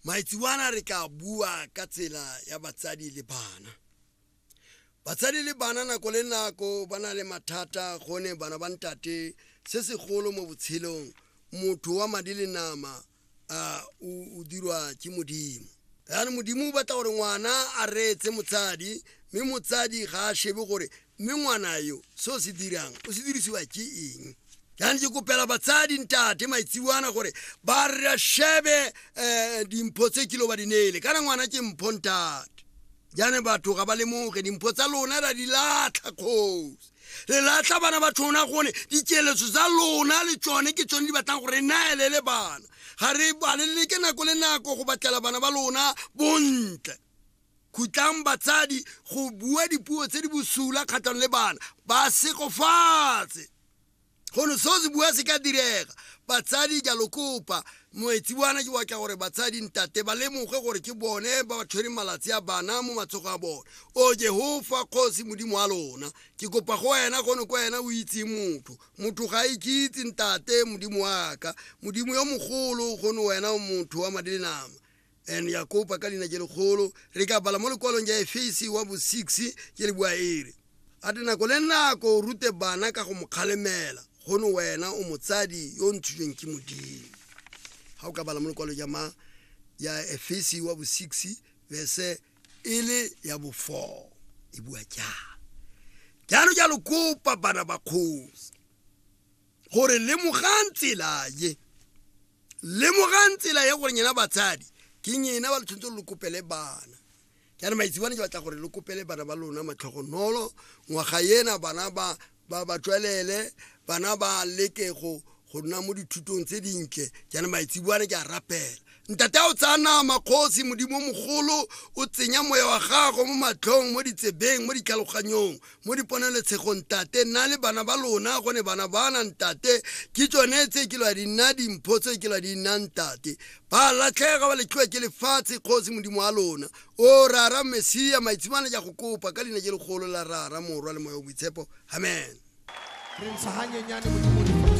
maitsebana re tla bua ka tsela ya batsadi le bana batsadi le bana nako le nako ba na le mathata gone bana ba ntate se segolo mo botshelong motho wa madi le nama a o dirwa ke modimo yaanong modimo o batla gore ngwana a reetse motsadi mme motsadi ga a shebe gore mme ngwana yo se o se dirang o se dirisiwa ke eng jaanong ke kopela batsadi ntate maitsiwana gore ba re shebe um dimpho tse kilo ba di neele kana ngwana ke mpho ntate jaanong batho ga ba lemoge dimpho tsa lona ra di latlha kgosi re latlha bana ba tshona gone dikeletso tsa lona le tsone ke tsone di batlang gore re naelele bana ga re balelele ke nako le nako go batlela bana ba lona bontle Khutlang batsadi go bua dipuo tse di bosula kgatlhanong le bana, ba segofatse. Gono seo se bua se ka direga. Batsadi ke a lo kopa, moetsi wana ke watla gore batsadi ntate ba lemoge gore ke bone ba ba tshwereng malatsi a bana mo matsogo a bone. O Jehofa Kgosi Modimo wa lona, ke kopa go wena gono ko wena o itseng motho. Motho ga a ikitse ntate, Modimo wa ka. Modimo yo mogolo, gono wena o motho wa madi le nama. and ya kopa ka leina je legolo re ka bala mo lekwalong ja efese wa bo 6 ke le bua ere a te nako le nako o rute bana ka go mo kgalemela gono wena o motsadi yo o ntshitsweng ke modimo ga o ka bala mo lekwalo ja ma ya efese wa bo 6 verse e le ya bo 4 e bua jalo jalo jalo kopa bana ba kgosi gore lemogang tsela ye lemogang tsela ye gore nyena batsadi ke nyena ba le tshwanetse gore le kopele bana ke are maitsibane ke batla gore le kopele bana ba lona matlhogonolo ngwaga ena bana ba ba ba tswelele bana ba leke go go nna mo dithutong tse dintle jaanong maitsibwane ke a rapela Ntate a o tsaya nama kgosi modimo mogolo o tsenya moya wa gago mo matlhong mo ditsebeng mo ditlhaloganyong mo diponeletshegong tate nna le bana ba lona gone bana ba na ntate ke tsone tse ke lwa di nna dimpho tse ke lwa di nna ntate ba latlhega ba letlhiwa ke lefatshe kgosi modimo wa lona o rara mesia maitshimane ja go kopa ka leina je legolo la rara morwa le moya o boitshepo amen re ntsha hanyenyane modimo